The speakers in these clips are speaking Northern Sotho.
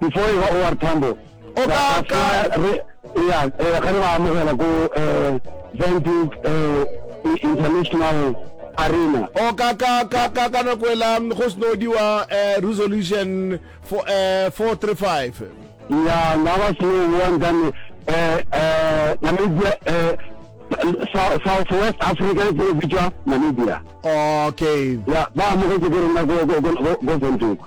before e ba o r tambo o ka ka re ya e ga re ba amogela go eh venting eh international arena o ka ka ka ka ka no kwela go sno diwa eh resolution for eh 435 ya na ba se wa ndane eh eh na me eh South West Africa ke bitsa Namibia okay ya ba mo ke ke rena go go go go go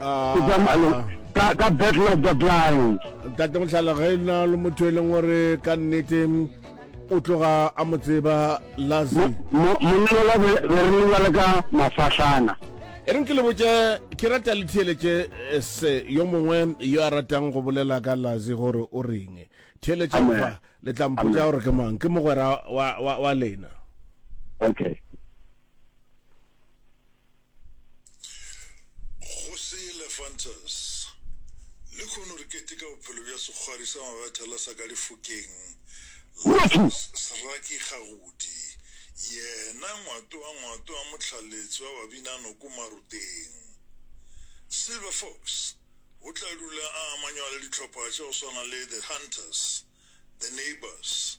ah, ka ka battle of the blind tate motlhala ge e na le motho e leng gore ka nnete o tloga a mo tseba lazi monnola be re lebale ka mafahlana e reng ke le botse ke rata le theeletše eh, se yo mongwe yo a ratang go bolela ka lazi gore o reng theeletše fa le tla mpotsa gore ke mang ke mogwera wa lena okay Go se le Francis. Lekhono re keteka bophelo bja sekgwari sa mabethela sa ka lefokeng la Sraki Kgagodi, yena ngwato wa ngwato wa mohlaletsi wa babinanoko Maruteng. Silver Fox o tla dula a amanywa le dihlopha tša go swana le The Hunters, The Neighbours,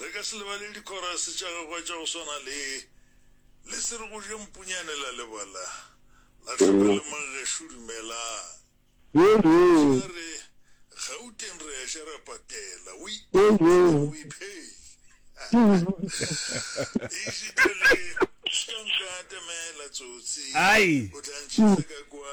Re ka se lebale dikhorase tša gagwe tša go swana le, Le se re go jeng punyane la leba la, la tlhoka le mang gešo dumelang. Gantši a re, Gauteng re a ja ra patela, o ipete le go iphehla. Eisitha le, O se ka nka atamela, tsotsi, o tla ntšhetša ka kwa.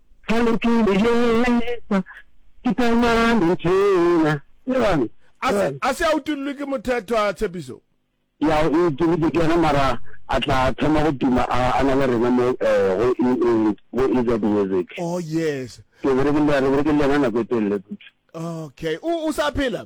Ga le ke le jesa, ke tla nwa lentshena. Le bone? A se, a se a utollwe ke mothethwa, Tshepiso? Ya o utollwe ke yena, mara a tla thoma go tuma a, a na le rena mo, eh, go E, E, go EZ Music. Oh, yes. Ke berekile, re berekile le yena nako e telele kudu. Okay. O, o sa phela?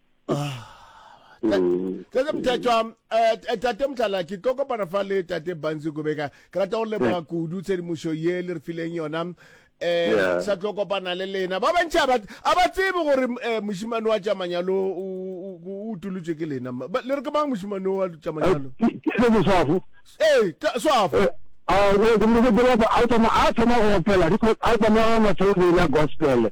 tlase mthatšwa um tate motlala ke tlo kopana fa le tate banzi kobeka ke rata go leboga kudu tshedimošo ye le re fileng yona um sa tlo kopana le lena ba bantši a ba tsebe gore um mošimane wa tšamanyalo o utolotswe ke lena le re ke mang mošimane wa tšamanyalo ee swafo a thoma go opela because a tsamaea matshelo le ena gospele